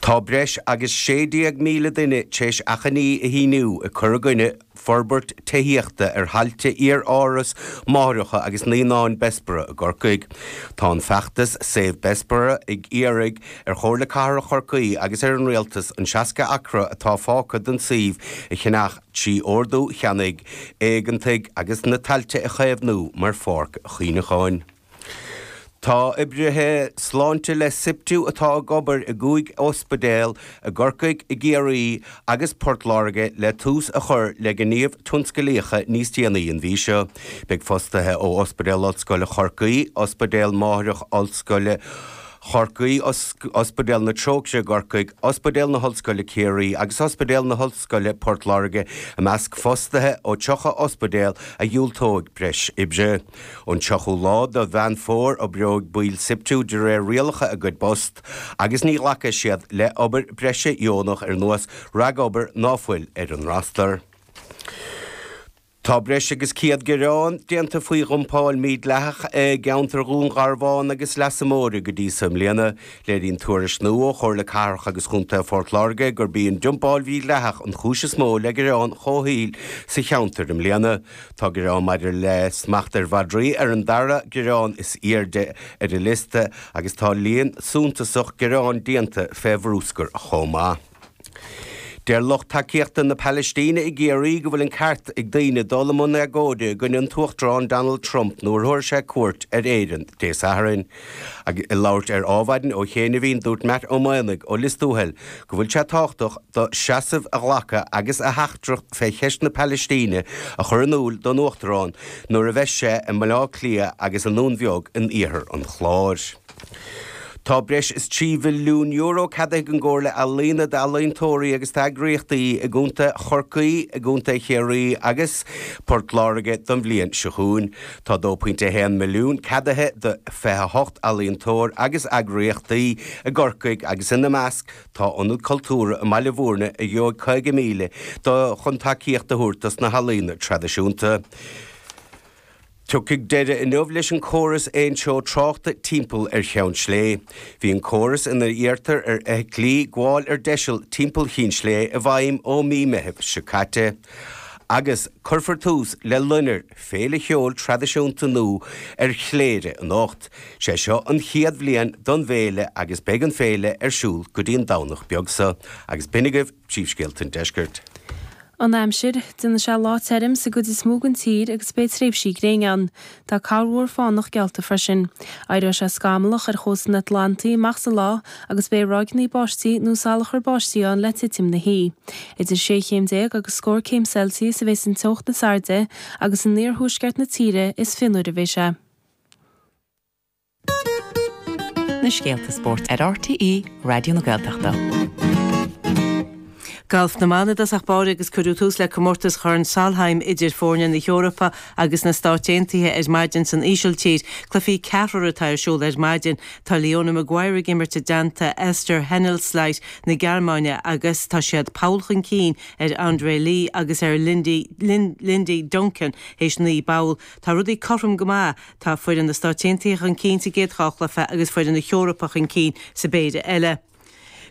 Tá breis agus 16,000 duine tar éis achainí a shíniú ag cur i gcoinne forbairt tithíochta ar thailte iar-áras máithreacha agus naíonáin Bessborough i gCorcaigh. Tá an feachtas Save Bessborough ag iarraidh ar Chomhairle Cathrach Chorcaí agus ar an Rialtas an 60 acra atá fágtha den suíomh a cheannach trí ordú cheannaigh éigeantaigh agus na tailte a chaomhnú mar pháirc chuimhneacháin. Tá oibrithe sláinte le Siptu atá ag obair i gcúig ospidéal i gCorcaigh, i gCiarraí agus i bPort Láirge le tús a chur le gníomh tionsclaíocha níos déanaí an mhí seo. Beidh fostaithe ó Ospidéal Ollscoile Chorcaí, Ospidéal Máithreach Ollscoile Chorcaí, Ospidéal na Trócaire i gCorcaigh, Ospidéal na hOllscoile Ciarraí agus Ospidéal na hOllscoile Port Láirge i measc fostaithe ó 30 ospidéal a dhiúltóidh breis oibre. Ón tríochú lá do Mheán Fómhair oibreoidh baill Siptu de réir rialacha a gcuid bpost agus ní ghlacfaidh siad le obair breise dheonach ar nós ragobair ná fuil ar an rastar. Tá breis agus 100 gearán déanta faoi dhumpáil mhídhleathach i gceantar Dhún Garbháin agus Leasa Móire go dtí seo i mbliana. Léiríonn tuairisc nua ó Chomhairle Cathrach agus Chontae Phort Láirge gurb í an dumpáil mhídhleathach an chúis is mó le gearáin chomhshaoil sa cheantar i mbliana. Tá gearáin maidir le smacht ar mhadraí ar an dara gearán is airde ar an liosta agus tá líon suntasach gearán déanta fé bhrúscar chomh maith. Deir lucht tacaíochta na Palaistíne i gCiarraí go bhfuil an ceart ag daoine dul i mbun agóide i gcoinne an Uachtarán Donald Trump nuair a thabharfaidh sé cuairt ar Éirinn Dé Sathairn. Ag labhairt ar Adhmhaidin ó chianaibhín dúirt Matt Ó Maonaigh ó Lios Tuathail go bhfuil sé tábhachtach dó seasamh a ghlacadh agus a theachtaireacht fé cheist na Palaistíne a chur in iúl don Uachtarán nuair a bheidh sé i mBaile Átha Cliath agus i nDún Beag in iarthar an Chláir. Tá breis is trí mhilliún euro ceadaithe ag an gComhairle Ealaíne d'ealaíontóirí agus d'eagraíochtaí i gContae Chorcaí, i gContae Chiarraí agus Port Láirge don bhliain seo chugainn. Tá 2.1 milliún ceadaithe do 28 ealaíontóir agus eagraíochtaí i gCorcaigh agus ina measc tá Ionad Cultúrtha i mBaile Mhúirne a gheobhaidh 50,000 euro chun tacaíocht a thabhairt dos na healaíona traidisiúnta. Tiocfaidh deireadh inniu leis an gcóras aontreo tráchta timpeall ar Cheann Slé. Bhí an córas ina iarrtar ar fheithiclí gabháil ar deiseal timpeall Chinn Slé i bhfeidhm ó mí Meithimh seo caite agus cuirfear tús le Lonnair Féile cheoil traidisiúnta nua ar Chléire anocht. Sé seo an chéad bhliain don bhféile agus beidh an féile ar siúl go dtí an Domhnach beag seo. Agus b'shin agaibh príomhscéalta an deiscirt. An aimsir, déanfaidh sé lá tirim sa gcuid is mó den tír agus beidh tréimhsí gréine ann. Tá corrmhúr fánach geallta freisin. Éireoidh sé scamallach ar chósta an Atlantaigh amach sa lá agus beidh ráigeanna báistí nó salachar báistí ann le titim na hoí. Idir sé chéim déag agus scór céim Celsius a bheas an teocht is airde agus in iarthuaisceart na tíre is fionnuaire a bheidh sé. na scéalta spóirt ar RTÉ Raidió na Gaeltachta. Galf na mban i dtosach báire agus cuireadh tús le comórtas Chorn Solheim idir foirne na hEorpa agus na Stáit Aontaithe ar maidin san Ísiltír. Cluichí ceathrair atá ar siúl ar maidin. Tá Leona Maguire ag imirt i dteannta Esther Henseleit na Gearmáine agus tá siad poll chun cinn ar Andrea Lee agus ar Lindy Duncan théis naoi bpoll. Tá rudaí cothrom go maith. Tá foireann na Stáit Aontaithe chun cinn sa gcéad dhá chluiche agus foireann na hEorpa chun cinn sa bpéire eile.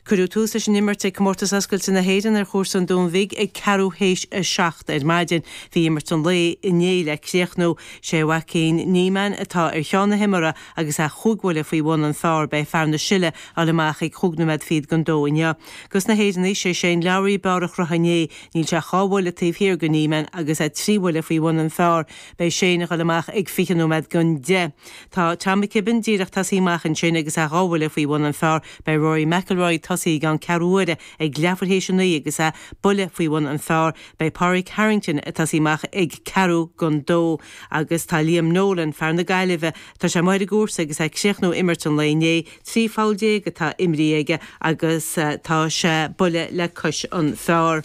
Cuireadh tús leis an imirt ag Comórtas Oscailte na hÉireann ar chúrsa an Dúin Bhig ag ceathrú théis a seacht ar maidin. Bhí imirt an lae inné le críochnú. Sé Joaquin Niemann atá ar cheann na himeartha agus é chúig bhuille faoi bhun an phar. Beidh fear na Sile ag dul amach ag chúig nóiméad fichead gon dó inniu. Gos na hÉireannaigh, sé Shane Lowry ab fhearr a chruthaigh inné. Níl sé ach dhá bhuille taobh thiar go Niemann agus é trí bhuille faoi bhun an phar. Beidh Shane ag dul amach ag fiche nóiméad gon deich. Tá Tom McKibbin díreach tosaithe amach ansin agus é dhá bhuille faoi bhun an phar. Beidh Rory McIlroy tosaithe i gceann ceathrú uaire ag leathuair théis a naoi agus é buille faoi bhun an phar. Beidh Pádraig Harrington ag tosaí amach ag ceathrú gon dó agus tá Liam Nolan, fear na Gaillimhe, tá sé amuigh ar an gcúrsa agus é ag críochnú imirt an lae inné. Trí pholl déag atá imrithe aige agus tá sé buille le cois an phar.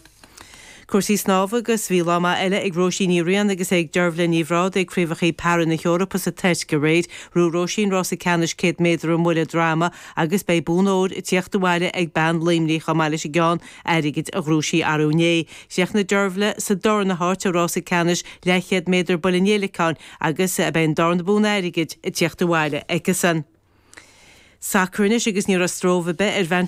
Cúrsaí snámha agus bhí lá maith eile ag Róisín Ní Riain agus ag Dearbhaile Ní Bhrádaigh ag Craobhachaí Para na hEorpa sa Tuirc aréir. Ghnóthaigh Róisín rása ceannais 100 méadar i mbuille droma agus beidh bonn óir ag tíocht abhaile ag bean Luimnigh chomh maith leis an gceann airgid a ghnóthaigh sí arú inné. Chríochnaigh Dearbhaile sa darna háit i rása ceannais leathchéad méadar buille an fhéileacáin agus beidh an darna bonn airgid ag tíocht abhaile aicesan. Sacar anois agus ní raibh stróbh ar bith ar bhean